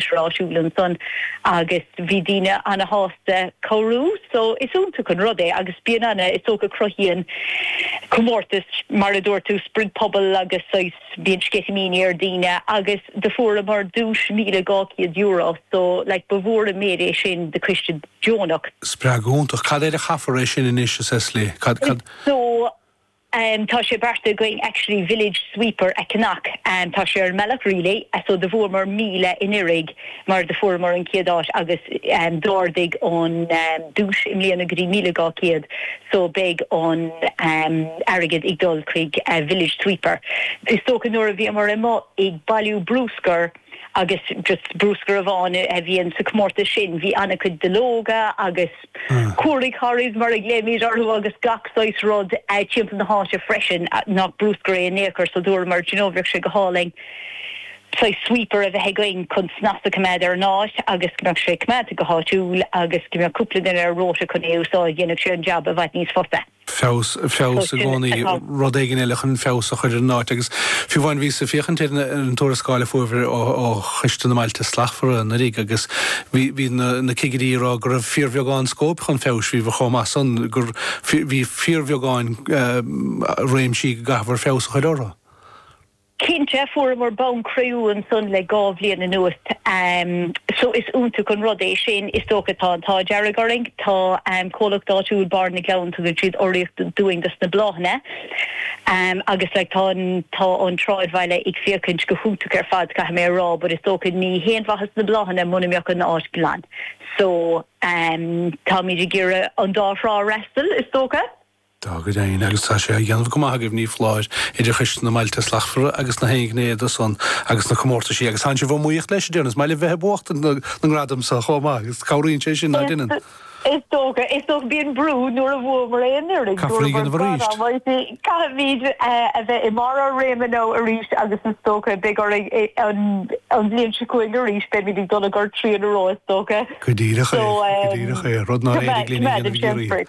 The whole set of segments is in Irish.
tráthúil ansan agus bhí daoine ana-shásta cabhrú so is iontach an rud é agus bíonn ana, is dócha cruthaíonn comórtas mar a dúirt tú sprid pobail agus saghas bíonn sceitimíní ar daoine agus do fuaireamar duais €1,200 so like ba mhór an méid é sin do choiste deonach. Spreagadh iontach. Cad air a chaithfear é sin anois n'fheadar? Cad, cad. Is so Em tá sé beartaithe againn actually village sweeper a cheannach em tá sé ar an mbealach really eh so do fuaireamar míle anuraidh mar do fuaireamar an chéad áit agus em d'ardaigh an em duais i mbliana go dtí míle dhá chéad so beidh an em airgead ag dul chuig eh village sweeper is dócha nuair a bhíomar amuigh ag bailiú bruscar agus just bruscar amháin a bhíonn sa comórtas sin bhí an-chuid duilleoga agus hairy mollies mar a ghlaoimid orthu agus gach saghas rud timpeall na háite freisin nach bruscar é in aon chor so dúramar do you know bheadh sé go hálainn saghas sweeper a bheith againn chun snas a choimeád ar an áit agus go mbeadh sé coimeádta go háitiúil agus go mbeadh cúpla duine ar rota chun é a úsáid dhéanfadh sé an jab i bhfad níos fusa. feabhas, feabhas i gcónaí, rud éigin eile chun feabhas a chur ar an áit agus fiú amháin bhíos ag féachaint ar na, ar an tuarascáil a fuaireabhair ó, ó Choiste na mBailte Slachtmhara anuraidh agus bhí, bhí na, na cigirí ag rá go raibh fíorbheagán scóip chun feabhais, bhí, bhí chomh maith san gur, bhí, bhí fíorbheagán eh, réimsí go gcaithfear feabhas a chur orthu. Cinnte, fuaireamar bonn cré-umha ansan le dhá bhliain anuas so is iontach an rud é sin. Is dócha tá an t-ádh dearg orainn, tá comhlacht áitiúil Bárr na gCleann, tugann siad urraíocht dúinn dos na bláthanna agus like tá an tá an tsráidbhaile ag féachaint go hiontach ar fad caithfidh mé a rá but is dócha ní haon mhaitheas na bláthanna muna mbeadh an áit glan so táimid ag iarraidh an dá thrá a fhreastal is dócha. Tá go deimhin, agus tá sé á dhéanamh go maith agaibh, ní foláir, idir Choiste na mBailte Slachtmhara agus nach aon ghné de san agus na comórtaisí agus tánn sibh á mbuachtaint leis de dhealramh. Is maith libh bheith ag buachtaint na na ngradam seo chomh maith agus cabhraíonn sé sin, ná déanann? Is dócha, is dócha. Bíonn brú nuair a bhuamar aon fhoireann, Caithfear é a bhuamar dhéanamh arís. gradam, mar sin caithfimid a bheith i mbarr ár réime now arís agus is dócha beidh orainn é an an bhliain seo chugainn arís, beimid ag dul ag gur trian aró is dócha. Go díreach é, So go díreach é, rud nár éirigh linn a dhéanamh i gCiarraí.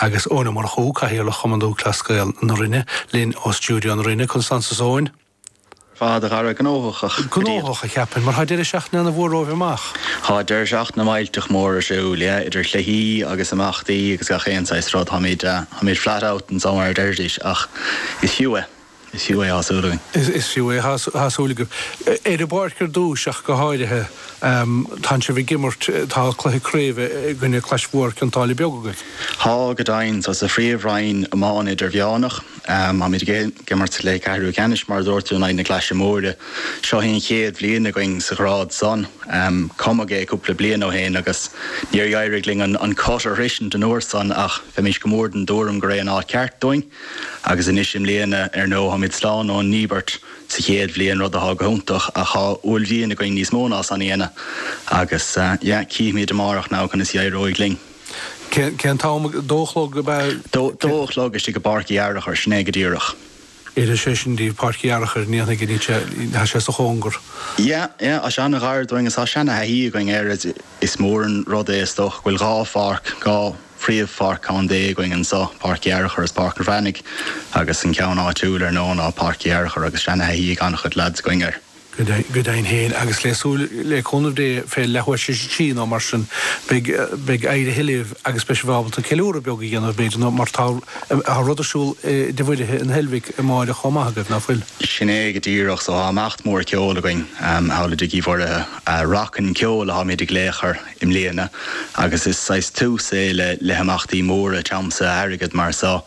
Agus Eoin Ó Murchú, Cathaoirleach Chumann Lúthchleas Gael na Rinne, linn ó stiúideo na Rinne, conas tánn tú Eoin. Fuadrach a Dara, gnóthach. Gnóthach, a cheapfainn, mar tá deireadh seachtaine ana mhór romhaibh amach. Tá deireadh seachtaine millteach mór ar siúl, yeah, idir chluichí agus imeachtaí agus gach aon saghas rud. Táimid, ah, táimid flat out anso mar a deirfidís, ach is fiú é. Is fiú é tá súil againn. Is fiú é tá súil agaibh. Ar an bpáirc ar dtúis ach go háirithe. Tánn sibh ag imirt, tá cluiche craoibhe i gcoinne Clais Mhór Cionn tSáile Beag agaibh. Tá, go deimhin. So sa Phríomh Roinn Iomána Idirmheánach. Táimid ag imirt le ceathrú ceannais, mar a dúirt tú, in aghaidh na Claise Móire. Seo í an chéad bhliain againn sa ghrád san. Cumadh é cúpla bliain ó shin agus níor éirigh linn an cut a shroisint an uair san ach bheimís go mór den dtuairim gur é an áit ceart dúinn. Agus anois i mbliana ar ndóigh táimid slán ón ndíbirt sa chéad bhliain rud atá go hiontach ach tá uaillmhian againn níos mó ná san a dhéanamh agus yeah cífimid amárach now conas a éireoidh linn. Cén t-am? Dó a chlog ab ea? Dó a chlog istigh i bPáirc Uí Fhearchair, sin é go díreach. Oireann sé sin díbh, Páirc Uí Fhearchair, ní dhéanfaidh linn sé, tá sé sa chóngar. Yeah, yeah, tá sé an-ghar dúinn agus tá seana-thaithí againn air, is mór an rud é is dócha go bhfuil dhá pháirc, dhá, phríomhpháirc contae againn anseo, Páirc Uí Fhearchair is Páirc an Bhreathnaigh, agus an ceann áitiúil ar ndóigh ná Páirc Uí Fhearchair agus seanathaithí ag an-chuid leaids againn air. Go deimhin féin, agus le súil le cúnamh Dé fé leathuair tar éis a trí nó mar sin, beidh éirithe libh agus beidh sibh ábalta ceiliúradh beag a dhéanamh b'fhéidir nó mar tá rud ar siúl i dTigh Mhuirithe in Heilbhic amáireach chomh maith agaibh, ná fuil? Sin é go díreach, so tá imeacht mór ceoil againn thall i dTigh Uí Mhuirithe. Rock and ceol atáimid ag glaoch air. i mbliana agus is saghas tús é le le himeachtaí móra tiomsaithe airgead mar so.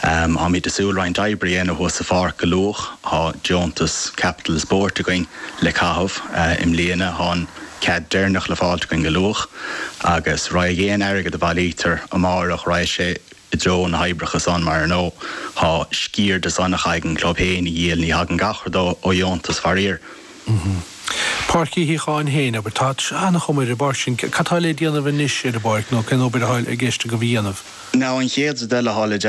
Táimid ag súil roinnt oibre a dhéanamh thuas sa pháirc go luath. Tá deontas Capital Sport againn le caitheamh i mbliana. Tá an cead deirneach le fáilt againn go luath agus raghaidh aon airgead a bhailítear amáireach raghaidh sé i dtreo na hoibreacha san mar ar ndóigh tá sciar de san a chaithfidh an club féin a dhíol. Ní thagann gach rud ó dheontas faraor. Páirc Uí Shíothcháin féin, abair. Tá an-chuma ar an bpáirc sin. Cad tá le déanamh anois ar an bpáirc nó cén obair atá i gceist agaibh a dhéanamh? Now an chéad deile thall i.